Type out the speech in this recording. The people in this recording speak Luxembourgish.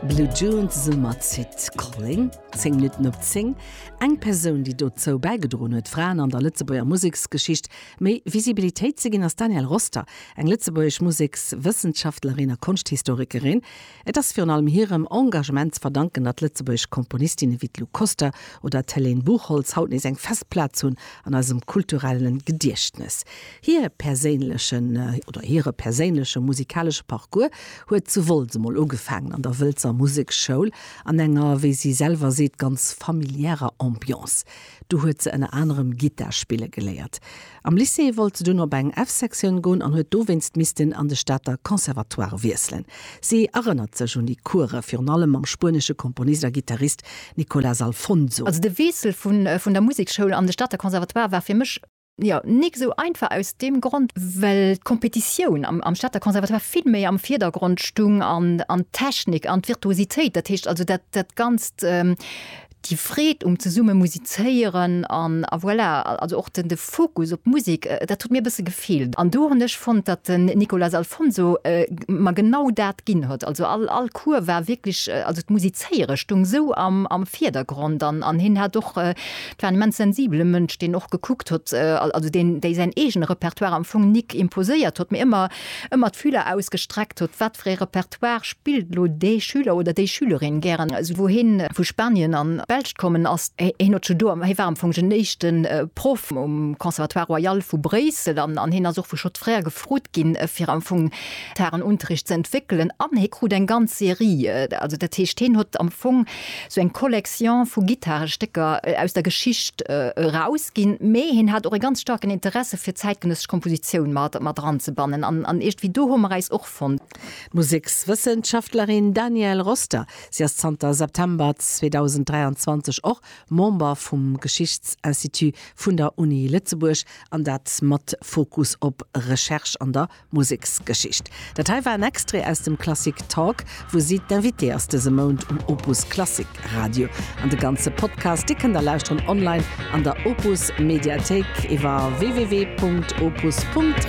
Blue Dunes Summerzit, Kolling, 10 Minutten op 10, Eng Persoun, déi dozou bäigedroen huet, Fraen an der Lëtzebuerger Museksgeschicht méi Visibilitéit ze ginn, ass d'Danielle Roster, eng lëtzebuergesch Musekswëssenschaftlerin a Konschthistorikerin. Et ass virun allem hirem Engagement ze verdanken, datt lëtzebuergesch Komponistinne wéi d'Lou Koster oder d'Helene Buchholtz haut nees eng fest Plaz hunn an eisem kulturelle Gediechtnes. Hir perséinlechen, oder hire perséinleche musikalesche Parcours huet zu Wolz emol ugefaangen, an der Wëlzer Museksschoul, an enger, wéi si selwer seet, ganz familiärer Ambiance. Do huet se ënner anerem Gittar spille geléiert. Am Lycée wollt se dunn op eng F-Sektioun goen an huet dowéinst missten an de Stater Conservatoire wiesselen. Si erënnert sech un déi Course, virun allem mam spuenesche Komponist a Gittarist Nicolas Alfonso. Also de Wiessel vun der Museksschoul an de Stater Conservatoire war fir mech Jo, nik esou einfach aus deem Grond, well d'Kompetitioun am Stater Conservatoire vill méi am Virdergrond stung an d'Technik an d'Virtuositéit. Dat heescht also dat Ganzt, déi Freed um zesumme musizéieren an voilà, also och de Fokus op d'Musek, dat huet mir e bësse gefeelt. An do hunn ech fonnt, datt den Nicolas Alfonso mer genau dat ginn huet. Also all Cours war wierklech, also d'Musizéiere stung esou am Virdergrond an hien hat och Et war en immens sensibele Mënsch, deen och gekuckt huet, also deen, déi säin eegene Repertoire am Fong nik imposéiert huet, mee ëmmer, ëmmer d'Fühler ausgestreckt huet, wat fir ee Repertoire spillt elo dee Schüler oder déi Schülerin gären. Also wou hie vu Spanien an d'Belsch kommen ass, hien huet scho do, hie war am Fong den éischte Proff um Conservatoire Royal vu Bréissel an, an hien ass och vu Schott Frères gefrot ginn, fir am Fong d'Harren-Unterricht ze entwéckelen an hie krut eng ganz Serie, also dat heescht, hien huet am Fong, sou eng Collection vu Gittarestécker aus der Geschicht erausginn, mee hien hat och e ganz staarken Interesse fir zäitgenëssesch Kompositioun mat mat eranzebannen an iergendwéi do hu mer äis och fonnt. D'Musekswëssenschaftlerin Danièle Roster, si ass zanter September 2023 och Member vum Geschichtsinstitut vun der Uni Lëtzebuerg, an dat mat Fokus op Recherche an der Museksgeschicht. Dat hei war en Extrait aus dem Klassik Talk, wou si d'Invitée ass dëse Mount um Opus Klassik Radio. An de ganze Podcast, dee kënnt der lauschteren online an der Opus Mediathéik iwwer www.opus.radio.